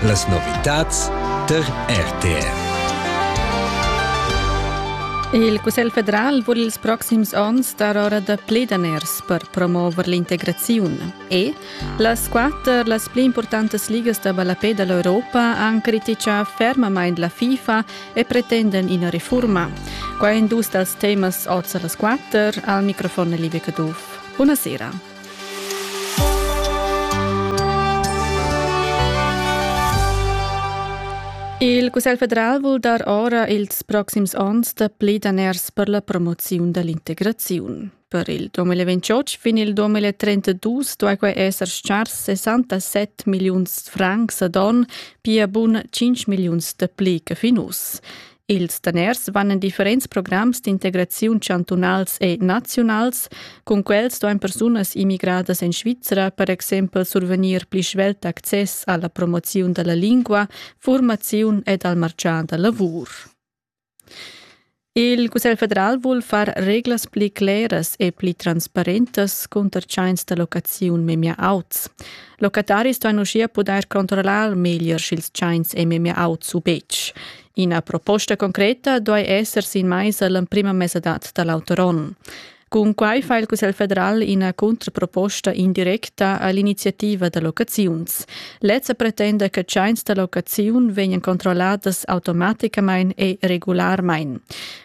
Las novitats tar RTR. Il Cussegl federal vul ils proxims onns dar ora da pli daners per promover l'integraziun e las quatter las pli importantas ligas da ballapè dall'Europa han criticà fermamain la FIFA e pretenden ina reforma. Qua en dus dals temas oz a las quatter al microfon Liebe Caduff. Buonasera. Il Cussegl federal vul dar ora ils proxims onns dapli daners per la promoziun dall'integraziun. Per il 2028 fin il 2032 duai quai esser schars 67 milliuns francs ad on, pia bun 5 milliuns dapli che fin uss. Ils daners van en differents programs d'integraziun chantunals e naziunals. Cun quels duain persunas immigradas en Svizra per exempel survegnir pli svelt access alla promoziun dalla lingua, formaziun ed al marcian da lavur. Il Cussegl federal vul far reglas pli cleras e pli transparentas cunter tschains da locaziun memia auts. Locataris duain uschia pudair controllar meglier sch'ils tschains è memia auts u betg. Ina proposta concreta duai esser sin maisa l'emprima mesadad da l'auter onn. Cun quai fa il Cussegl federal ina contraproposta indirecta all'iniziativa da locaziuns. Lezza pretenda che tschains da locaziun vegnan controlladas automaticamain e regularmain.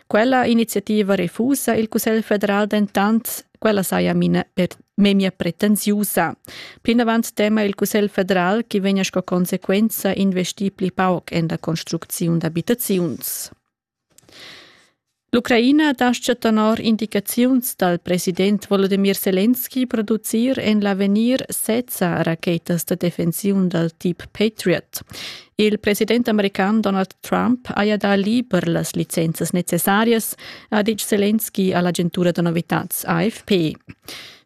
Quella iniziativa refusa il Cussegl federal dentant Quella saja mina per memia pretensiusa. Plinavant tema il Cussegl federal che vegna sco consequenza investir pli pauc en la construcziun d'abitaziuns. L'Ucraina dascha tenor indicaziuns dal president Volodymyr Zelensky producir en l'avegnir sezza rachetas da defensiun dal tip Patriot. Il president american Donald Trump haja dà liber las licenzas necessarias, ha ditg Zelensky a l'agentura da novitads AFP.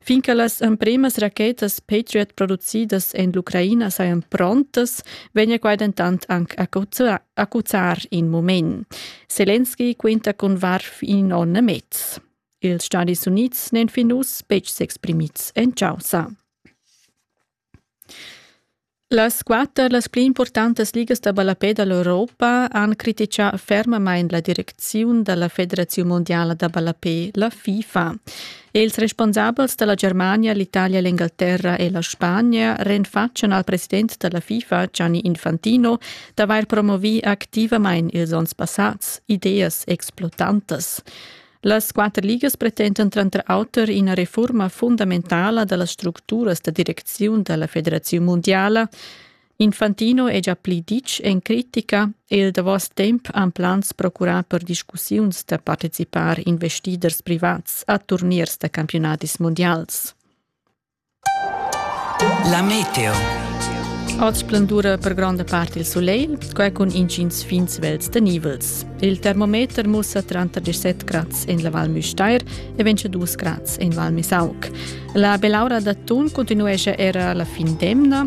Fin che las emprimas rachetas Patriot producidas en l'Ucraina sajan prontas, vegnia quai dentant anc accuzzar in mument. Zelensky quinta cun varf in onn e mez. Ils Stati Unids n'èn fin uss betg s'exprimids en chaussa. Las quatter las pli impurtantas ligas da ballapè da l'Europa han crititgà fermamain la direcziun da la Federaziun mundiala da ballapè, la FIFA. Ils responsabels da la Germania, l'Italia, l'Engalterra e la Spagna renfatschan al president da la FIFA, Gianni Infantino, d'avair promovì activamain ils onns passads ideas explotantas. Las quatter ligas pretendan tranter auter ina refurma fundamentala da las structuras da direcziun da la Federaziun mundiala. Infantino è già pli ditg en critica e il davos temp han plans procurà per discussiuns da participar investiders privats a turniers da campiunadis mundials. La meteo. Oz splendura per gronda part il sulegl, quai cun intgins fin svels tenivels. Il termometer mussa tranter 17 grads en la Val Müstair e 22 grads en Val Misauk. La belaura d'atun continuescha era la fin d'emna